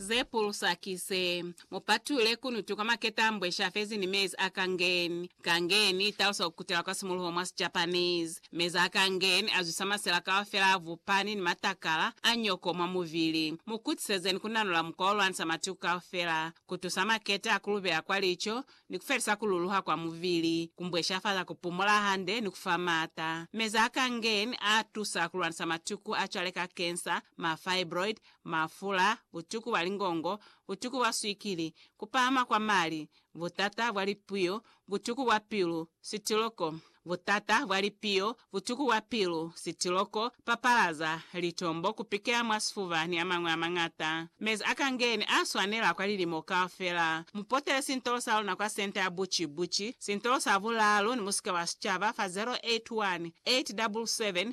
Ze pulusa ki ze, Mu patule kunutu kwa maketa a mbweshi a fezi ni mezi a kangen. Kangen i talusa ku kutela kwa simuluho mwa Sijapanese. Mezi a kangen a zwisa masela kaufela a vupani ni matakala a nyoko mwa mubili. Mu kutisezeni ku nanula mukwa o lwanisa matuku kaufela, ku tusa maketa a ku lubela kwa lico, ni ku felisa ku luluha kwa mubili, ku mbweshafaza ku pumula hande, ni ku fa maata. Mezi a kangen a tusa ku lwanisa matuku a cwale ka cancer, ma fibroid, mafula, butuku bwa lingongo, butuku bwa swikili, kupahama kwa mali, butata bwa lipiyo, butuku bwa pilu, sitiloko, butata bwa lipiyo, butuku bwa pilu, sitiloko, papalaza, litombo, kupikela mwa sifuba ni amañwi amañata. Mezi a kangeni a swanela kwa lilimo kaufela. Mu potele sintolo sa luna kwa Senta ya Buci Buci, Sintolo sa Bulaalu ni Musika wa Sicaba fa 081 877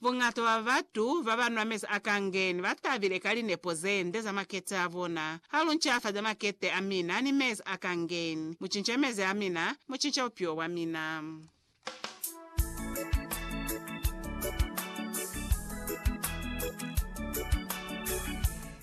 Buñata bwa batu babanwa mezi a kangeni batabile ka linepo zende za makete abona. Haluncafaze makete amina ni mezi a kangeni. Mucince mezi amina, mucince bupilo bwamina.